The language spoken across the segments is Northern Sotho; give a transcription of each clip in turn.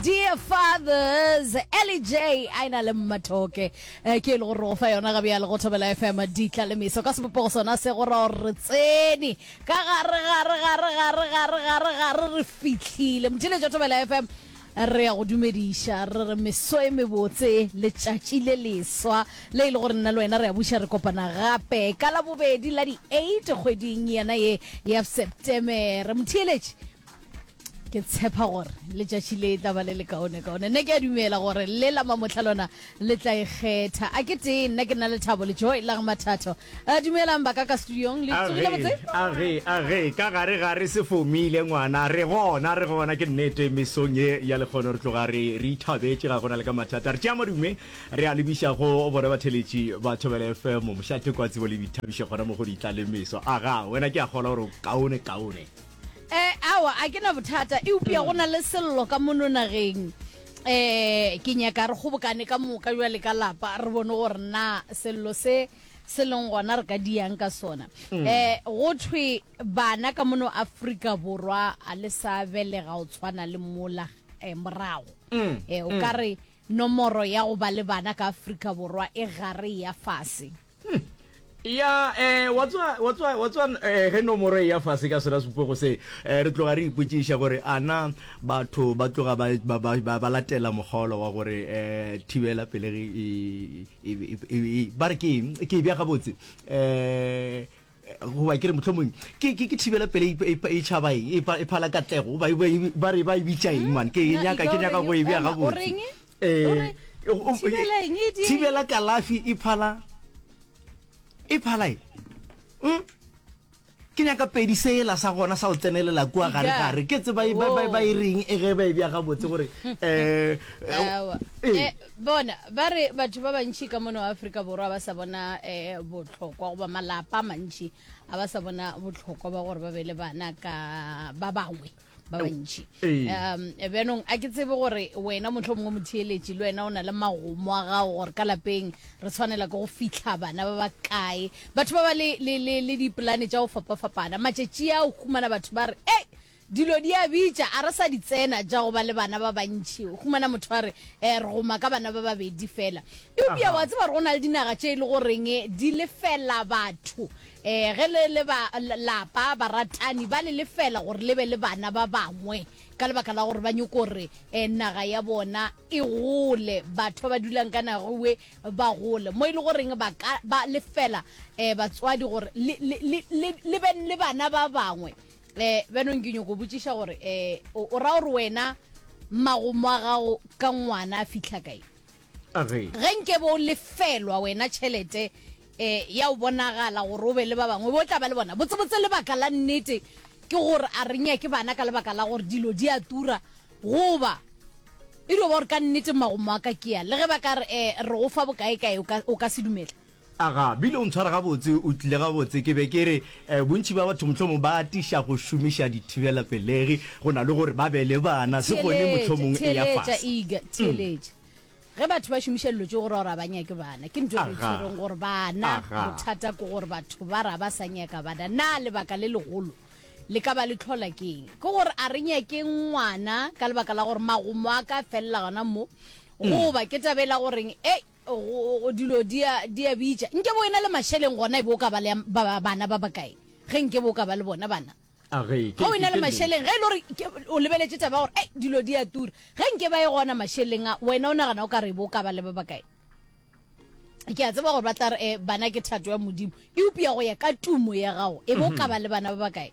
Dear Fathers, Ellie J a e na le mmathoke eh, ke e le gore re go fa yona ga bjale go thobela fm ditla le meso ka sebopego sona se go ra gore re tsene ka gare gare gare gare gare gare gare re fitlhile motheletšo thobela fm re ya go dumediša re re meso e mebotse letšatši le leswa le e le gore nna le wena re a buša re kopana gape ka la bobedi la di-8 kgweding yena ye ya septemere motheeletši ke tshepa gore letšatši le tla ba le lekaone kaone nna ke a dumela gore le la mamotlha lona le tla ikgetha a ke tee nna ke nna le thabo le joy la mathatho a dumelang ba ka ka studiong le tsogile botse age age ka gare ga re se fomile ngwana re gona re gona ke nnete mesong e ya le kgone re tloga re re ithabetse ga gona le ka mathata re tšea madume re a lebiša go bona batheletši ba thobela fm mošate kwa tsebo le boithabišo gona mo go di tla le meso aga wena ke a kgola gore kaone kaone eh awa a ke na bothata eupša go na le sello ka mono nageng eh ke nyaka re kgobokane ka moka jwale ka lapa re bone gore na sello se se leng gona re ka diyang ka sona um go thwe bana ka mono aforika borwa a le sa belega o tshwana le mola um morago um o ka re nomoro ya go ba le bana ka aforika borwa e gare ya fase ya um wa tswa ge nomoro e ya fase ka sera supego se um re tloga re ipotsiša gore ana batho ba tloga ba latela mokgaolo wa gore um thibela pelegi ba re ke ke e bja gabotse um goba ke re motlhomong ke ke thibela pele e tšhaba e phala katlego ba re ba e bitša eng mane ke nyaka ke nyaka go e bja gabotse Eh, thibela kalafi e phala e phala e hmm? ke nyaka pedi sela sa gona sa go tsenelela kua gare gare ke tse ba e reng e ge ba e bjaga botse gore um eh, eh, eh, bona ba re batho ba bantšhi ka mone wa aforika borwa ba sa bona um botlhokwa goba malapa mantšhi a ba sa bona botlhokwa ba gore ba be le bana ka ba bangwe ba bantši um bjanong a ke tsebe gore wena motlho mongwe motheeletši le wena o na le magomo a gago gore ka lapeng re tshwanela ke go fitlha bana ba ba kae batho ba ba le dipolane tša go fapafapana matšatši a o humana batho ba re e dilo di a bitša a re sa di tsena ja go ba le bana ba bantšhi o humana motho a re um re goma ka bana ba babedi fela eupša wa tseba gore go na le dinaga tše e le goreng di lefela batho Ee, ge le le ba lapa, baratani ba le lefela gore le be le bana ba bangwe ka lebaka la gore ba nyoko gore um naga ya bona e gole, batho ba ba dulang ka nagewe ba gole, mo e le goreng ba ka ba lefela um batswadi gore le, le, le, le, le be le bana ba bangwe. Um bjanong ke nyoko botšiša gore um o, o ra gore wena magomo a gago ka ngwana a fihla kae? A re. Ge nkebe o lefelwa wena tšhelete e, ya go bonagala gore o be le ba bangwe, o be o tla ba le bona. Botsebotse lebaka la nnete ke gore a re nyake bana ka lebaka la gore dilo di a tura, goba e dio ba gore ka nnete magomo a ka ke a, le ge ba ka re, E, re go fa bokaekae, o ka, o ka se dumele? Aga, bile o ntshwara gabotse, o tlile gabotse. Ke be ke re, eh, bontši bja batho mohlomong ba atiša go šomiša dithibelapelegi go na le gore ba be le bana, se gone Theeletša, mohlomong eya theeletša, fase. eager, Mm. theeletša. Ge batho ba šomiša dilo tšeo go ra gore ga ba nyake bana, ke ntwa e re e Aga. tshwereng gore bana, Aga. bothata ke gore batho ba re ga ba sa nyaka bana. Na lebaka le legolo le ka ba le tlhola ke eng? Ke gore a re nyake ngwana ka lebaka la gore magomo a ka felela gona mo, goba ke taba e la goreng, ei, Go, dilo di a, di a bitša. Nke bo ena le mašeleng gona, e be o ka ba le ba, bana ba bakae, ge nke bo o ka ba le bona bana. A ge, ke, Ge o ena le mašeleng, ge e le gore o lebeletše taba ya gore, ei, dilo di a tura, ge nke ba e gona mašeleng a, wena o nagana o ka re e be o ka ba le ba bakae? Ke a tseba gore ba tla re, eh, bana ke thato ya Modimo, eupša go ya ka tumo ya gago, e be o ka ba le bana ba bakae?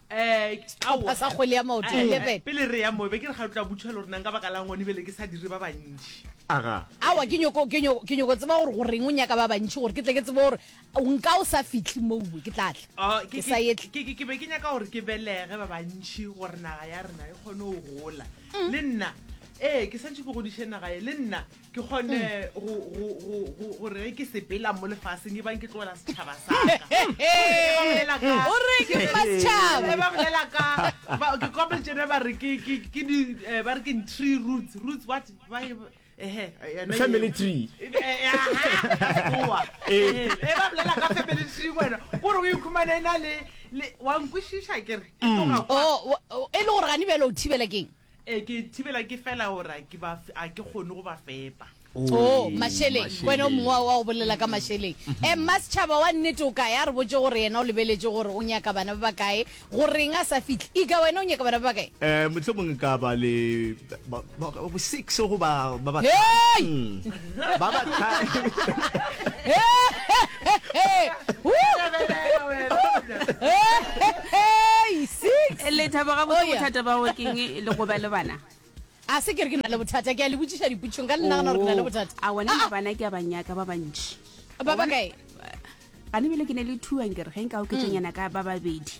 Sehlopha sa kgwele ya maoto, 11. pele re ya mo be ke re ga re tla butšhela gore nang ka baka la ngone bele ke sa dire ba bantši Aga. awa ke nyoko ke nyoko ke nyoko tseba gore goreng o nyaka ba bantši gore ke tle ke tsebe gore o nka o sa fitlhe moue ke tla tla Oh, ke ke sa ye ke- ke- ke be ke nyaka gore ke belege ba bantši gore naga ya rena e kgone go gola le nna ee ke santšhe ke godiše naga ye le nna ke kgone go- go- go- go- gore ge ke sepela mo lefaseng e bang ke tlogela setšhaba saka O re ke fa setšhaba. ba bolela ka ba- ke kopel tsene ba re ke- ke ke di- eh, ba re ke tree roots roots what ba e- ehe, yona Family eo. tree. Eh, eh, aha, oa. Eh. Eh, eh, ba bolela ka family tree wena kore o ikhumane e na le le- wa nkwešiša kere e tloga kwa. Oh, wa- oh, e le gore gane bjale o thibela keng Ee, ke thibela ke fela gore a ke ba f- a ke kgone go ba fepa. o mašeleng ke wena o mongwe wa- wa go bolela ka mašeleng um mma setšhaba wa nnete o kae a re botse gore yena o lebeletše gore o nyaka bana ba ba kae goreng a sa fihle ika wena o nyaka bana ba ba kae um mohlomong ka ba le ba- ba- ba- six goba ba ba Hey! Mm. ba ba lethabo ga botse bothata ba o keng e le goba le bana a se ke re ke na le bothata ke a le botsiša diputšong ka le nagana gore ke na le bothata a wena le bana ke a banyaka ba bantši ba ba kae gane bele ke ne le thuang ke re ge nka oketsanyana ka ba babedi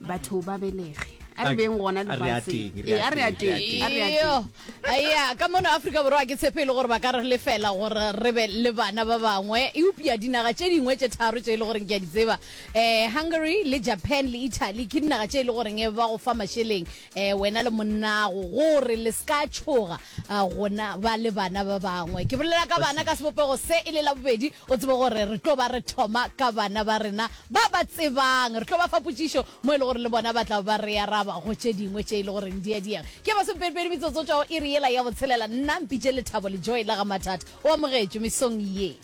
batho ba belege a re beng gona lefatshengea ka mono aforika borwa ke tshepe e le gore ba ka re le fela gore re be le bana ba bangwe eupša dinaga tše dingwe tše tharo tše e le goreng ke a di tseba um hungary le japan le italy ke dinaga tše e le goreng ba go fa mašeleng um wena le monnago gore le se ka tšhoga gona ba le bana ba bangwe ke bolela ka bana ka sebopego se e le la bobedi O tsebe gore re tlo ba re thoma ka bana ba rena ba ba tsebang. Re tlo ba fa potšišo mo e le gore le bona ba tla ba re araba go tše dingwe tše e le goreng di a diega. Ke masomepedipedi metsotso tšwa go iri yela ya botshelela. Nna Mpitše Lethabo Lejoe la ga Mathata o amogetšwe mesong ye.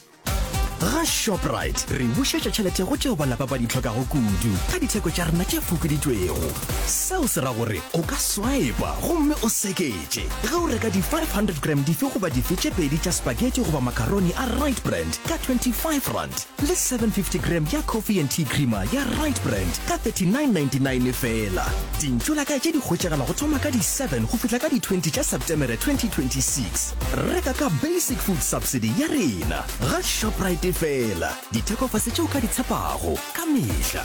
Ga Shoprite re bušetša tšhelete go tšeo balapa ba di hlokago kudu ka ditheko tša rena tše fokoditšwego. Seo se ra gore o ka swaepa gomme o seke tše ge o reka di-500 gram dife goba dife tše pedi tša spaghetti goba macaroni a right brand ka 25 rand le 750 gram ya coffee and tea creamer ya right brand ka 3999 fela dintšo la ka tše di hwetšagala go thoma ka di-7 go fihla ka di-20 tša septemere 2026 reka ka basic food subsidy ya rena ga shoprite fela dithekofase tšeo ka di tshepago ka mehla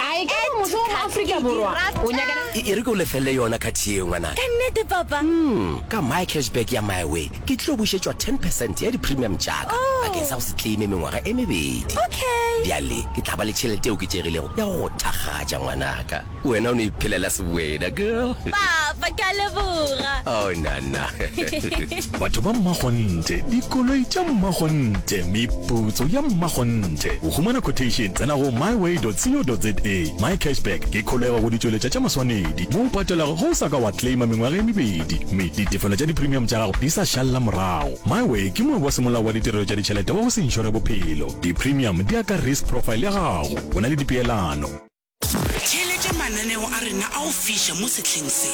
Ae ke gore motho wa mo Afrika Borwa o nyakela. E, e re ke o lefelele yona khathi yeo, ngwanaka. Ka nnete, Papa. Umm, ka my cashback ya MyWay, ke tlo bušetšwa ten percent ya di-premium tša-ka Oh. bakeng sa go se claime mengwaga e mebedi. Okay. Bjale ke tla ba le tšhelete e oketšegilego ya go go thakgatša, ngwanaka. Wena o no iphelela sebwena, girl. Papa, ke a leboga. Oh, nana. Batho ba mmakgonthe, dikoloi tša mmakgonthe, meputso ya mmakgonthe. Go humana quotation, tsena go myway.co.za. MyCashback ke kholego go ditšweletša tša maswanedi mo o patelago ge o sa ka wa claima mengwaga e mebedi mme ditefelo tša dipremium tša gago di sa šalela morago. MyWay ke moabi wa semolao wa ditirelo tša ditšhelete wa go se inšore bophelo. Dipremium di ya ka risk profile ya gago. O na le dipeelano. Theeletša mananeo a rena a go fiša mo sehleng se.